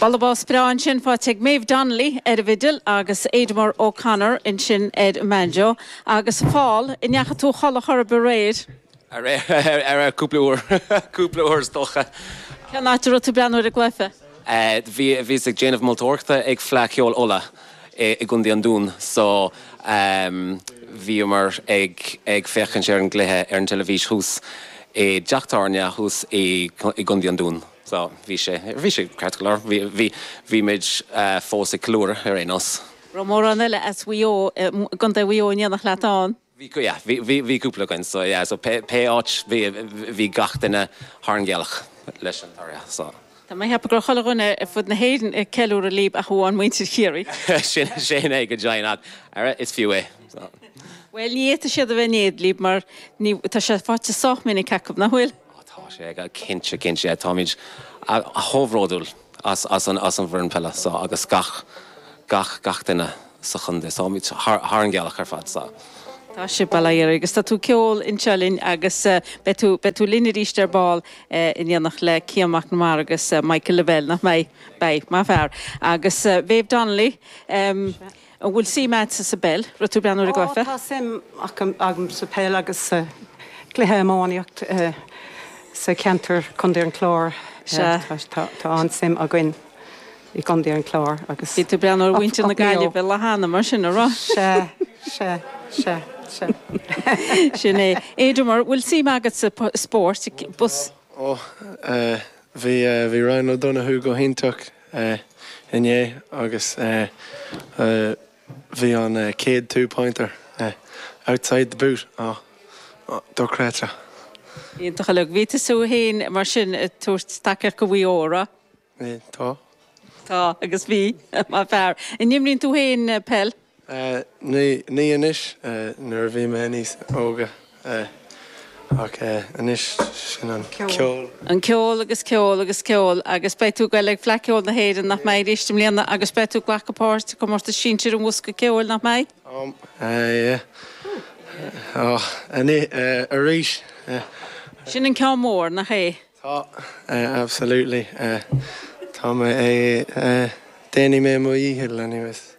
Bualadh bos breá ansin faighte ag Maeve Donnelly ar an bhfidil agus Ademar O'Connor ansin ar an mbanjo agus Paul, a ndeachaigh tú a chodladh ar chor ar bith aréir? Ara cúpla uair, cúpla uair is dócha. Cén áit a raibh tú ag breathnú ar an gcluiche? Bhíos ag déanamh moltóireachta ag Fleadh Cheoil Uladh. i gContae an Dún so bhíomar ag féachaint ar an gcluiche ar an teilifís thuas i dteach tábhairne thuas i gContae an Dún so bhí sé, bhí sé ceart go leor, bhí, bhí muid fós ag ceiliúradh ar aon nós. raibh mórán eile as Maigh Eo, as Contae Mhaigh Eo in éineacht leat ann. Bhí, yeah, bhí, bhí, bhí cúpla againn, so, yeah, so pé, pé áit, bhí, bhí gach duine thar an ngealach leis an toradh, so. Tá mé ag ceapadh go raibh chuile dhuine ar fud na hÉireann ag ceiliúradh libh ach amháin muintir Chiarraí. Sin, sin é go deimhin ach, ara, is fiú é, so. Bhuel, ní fhéadfadh siad a bheith in éad libh mar ní, tá sé faighte sách minic acu, nach bhfuil? Ó, tá sé, cinnte, cinnte, táimid chomh bhródúil. as an bhfoireann peile so agus gach, gach, gach duine sa chontae. So táimid thar, thar an ngealach ar fad so. Tá sibh, bailigh ort, agus tá tú ag ceol anseo linn agus beidh tú, beidh tú linn arís ar ball in éineacht le Cian Mac na Mara agus Michael Lavelle, nach mbeidh? Beidh, maith fear. Agus Maeve Donnelly, An bhfuil suim agatsa sa bpeil? Raibh tú ag breathnú ar an gcluiche? Ó, tá suim agam sa bpeil agus sa gcluiche iománaíocht sa gceantar Contae an Chláir. Sea. Tá an-suim againn i gContae an Chláir agus. Bhí tú ag breathnú ar mhuintir na Gaillimhe á leanacht, mar sin, an raibh? Sea, sea, sea, sea. Sin é. Ademar, bhfuil suim agat sa spórt? Ó, bhí Ryan O'Donoghue go hiontach inné agus bhí an chéad two pointer outside the boot dochreidte. Iontach uilig. Bhí tú féin mar sin ag tabhairt tacaíocht do Mhaigh Eo, an raibh? Tá. Tá agus bhí. Maith fear. An imríonn tú féin peil? Ní anois, nuair a bhí mé níos óige, ach anois sin an ceol. An ceol agus ceol agus ceol agus beidh tú ag goil ag Fleadh Cheoil na hÉireann, nach mbeidh, arís i mbliana agus beidh tú ag glacadh páirt i gcomórtas sinsir an bhosca ceoil, nach mbeidh? Sin an ceann mór, nach é? Tá, absolutely. Tá mé ag, déanfaidh mé mo dhícheall anyways.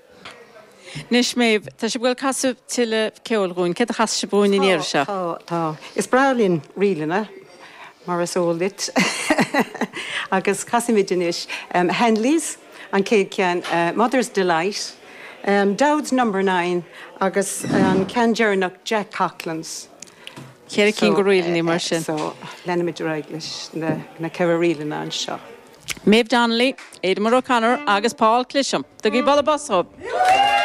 Anois Maeve, tá sibh, ag goil ag casadh tuilleadh ceoil dhúinn, céard a chasfaidh sibh dhúinn an iarraidh seo? Tá, tá, tá. Is breá linn ríleanna, mar is eol duit, agus casfaimid anois Hanley's, an chéad cheann, Mother's Delight, Dowd's Number Nine agus an ceann deireanach Jack Coughlan's. Ceithre cinn de ríleanna mar sin. So, leanfaimid ar aghaidh leis na ceithre ríleanna anseo. Maeve Donnelly, Aidan O'Connor agus Paul Clisham. Tugaigí bualadh bos dhóibh!